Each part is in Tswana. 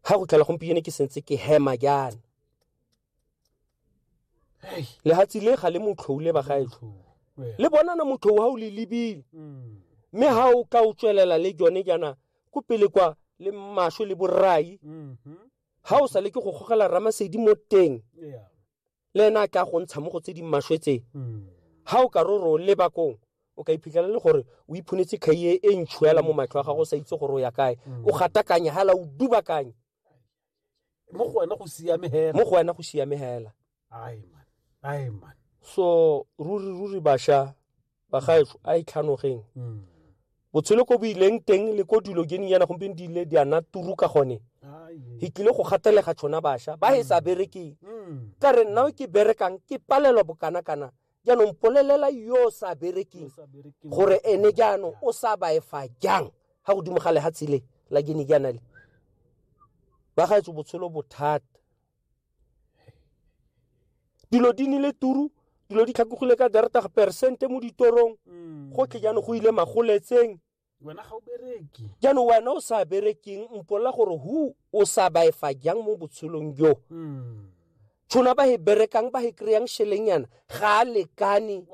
ga go tlhela gompieno ke sentse ke hema jaana lehatsing le ga le motlhou le bagaetsho le bonana motlhou ga o le lebile mm. mme ga o ka o tswelela le jone jaana ko pele kwa le maswe le borai ga mm-hmm. o sa le ke go gogela ramasedi mo teng le ena a tla go ntsha mo go tse di maswe tse ha o ka re o leba kong o ka iphitlhela le gore o iphonetse kgaie e ntšho yala mo matlho a gago o sa itse gore o ya kae o gatakanya hala o dubakanye mo go wena go siame hela mo go wena go siame hela ai man ai man so ruri ruri basha bagaetsho a itlhanogeng e mm. botshelo ko bo ileng teng le ko dilo ke yana gompieno di ile di ana turu ka gone e tlile go gatelega tshona bašwa ba e sa mm. berekeng mm. ka re nna ke berekang ke palelwa bokana-kana jaanong polelela yo o sa berekeng gore ene jaanong o sa baefa jang ga godimo ga lehatshe le la kene jaana le ba gaetso botshelo bothata dilo di nile turu dilo di tlhakogile ka dertag persente mo ditorong mm. gotlhe jaanong go ile magoletseng wena ga o bereke jaanong wena o sa berekeng mpolela gore hu o sa baefa jang mo botshelong jo mm. tshona ba e berekang ba e kry-ang shelenyana ga a lekane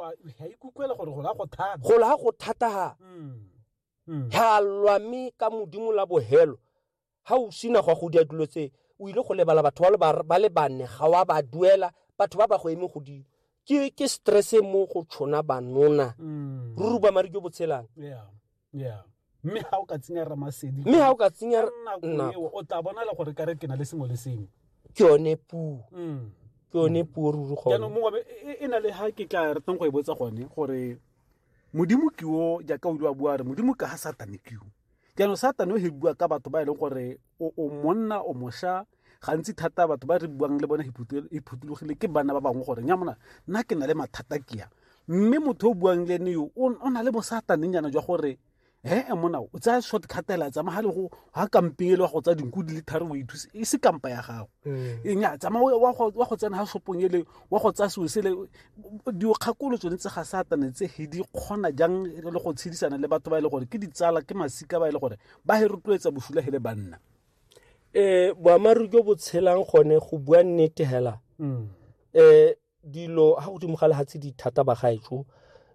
gola go thataga mm. ga lwame ka modimo la bogelo ga o sena go a go dira dilo tse o ile go lebala batho ba le bane ga wa ba duela batho ba ba go eme godimo ke ke stress e mo go tshona banona mm. ruri ba mari jo botshelang yeah yeah mme ha o ka tsenya ramasedi mme ha o ka tsenya nna o tla bona le gore ka re ke na le sengwe le sengwe ke yone puo mm. ke yone mm. puo ruri gone jaanong mongwe e, e na le ha ke tla ratang go e botsa gone gore modimo ke o jaaka o ile wa bua re modimo ka ha satane ke o jaanong satane o he bua ka batho ba e leng gore o monna o mosha gantsi thata batho ba re buang le bone e phutulogile ke bana ba bangwe gore nya mona nna ke na le mathata kea mme motho o buang le ene yo o na le bosatanengyana jwa gore ee eh, mona o tsaya short catela tsamaya le go ga kampeng e le wa go tsaya dinku di le tharo o ithuse e se kampa ya gago mm. enya tsamaya wa go tsena ga shopong ele wa go tsaya seo sele dikgakolo tsone tse ga satane tse he di kgona jang e le go tshedisana le batho ba e le gore ke ditsala ke masika ba e le gore ba he rotloetsa bosula he le banna um boammaaruri jo bo tshelang gone go bua nnete hela um dilo ga godimo ga lehatshe di thata ba gaetso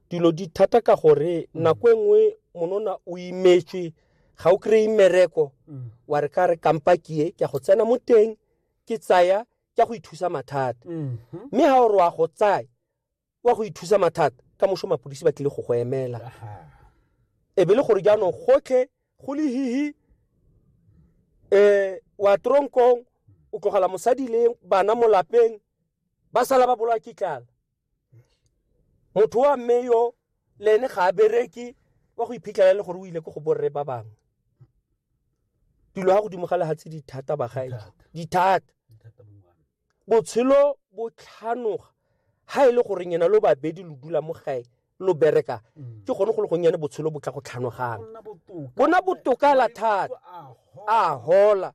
dilo di thata ka gore mm. nako e nngwe monona o imetswe ga o kry-e mmereko mm. wa re ka re kampa kie ke a go tsena mo teng ke tsaya ke go ithusa mathata mm-hmm. mme ga o re wa go tsaya wa go ithusa mathata ka moso mapodisi ba tlile go go emela e be le gore jaanong gotlhe go le hihi um wa tronkong o tlogela mosadi le bana mo lapeng ba sala ba bolwa ke tlala motho wa mme yo le ene ga a bereke wa go iphitlhela e le gore o ile ko go borre ba bangwe dilo ga godimo ga lehatshe dithata bagaedi dithata botshelo bo tlhanoga ha e le gore nyena lo babedi lo dula mo gae lo bereka ke gone go le gonnyane botshelo bo tla go tlhanogang bona botoka la thata a hola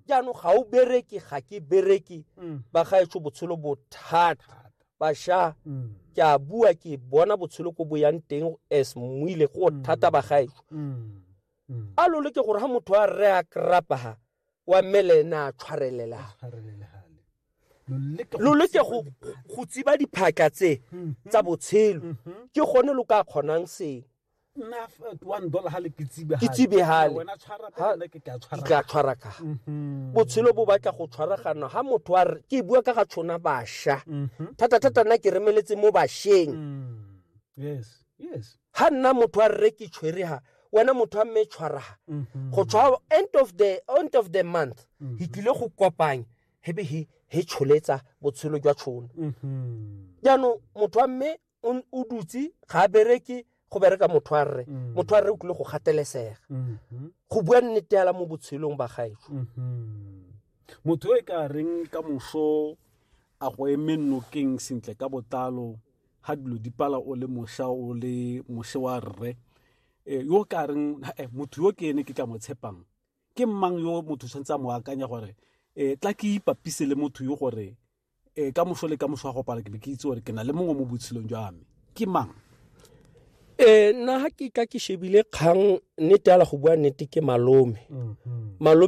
jaanong ga o bereke ga ke bereke ba gaetsho botshelo bothata basha ke a bua ke bona botshelo ko bo yang teng as moile go thata ba gaetsho a lole ke gore ga motho a re a krapa ha wa mmele ene a tshwarelela lo leke go tsiba diphatla tse tsa botshelo ke gone lo ka kgonang sengwe nna uh, one dollar ha le ke tsibehale ke tsibehale wena tshwara ka nna ke ka tshwara ka tshwara ka mhm. botshelo bo batla go tshwaragana ha motho wa ke bua ka ga tshona basha mhm. thata thata nna ke remeletse mo basheng mm. yes yes ha nna motho wa rre ke tshwere ha wena motho wa mme tshwara ha mhm. go tshwa end of the end of the month he tlile go kopanya hebe he he tsholetsa botshelo jwa tshona jaanong motho wa mme o n- o dutse ga a bereke go bereka motho a rre Mm. motho a rre o tlile go gatelesega Mhm. go bua nnete yala mo botshelong ba gaetsho Mhm. motho yo e ka reng ka moso a go eme nokeng sentle ka botlalo ga dilo di pala o le moša o le moše wa rre Eh, yo o ka reng eh, motho yo ke ene ke tla mo tshepang ke mang yo motho o tshwanetse a mo akanya gore um tla ke ipapise le motho yo gore e ka moso le ka moso wa go pala ke be ke itse gore ke na le mongwe mo botshelong jwa me ke mang um nna ga ke ka ke shebile kgang nnete ala go bua nnete ke malome mm-hmm. malome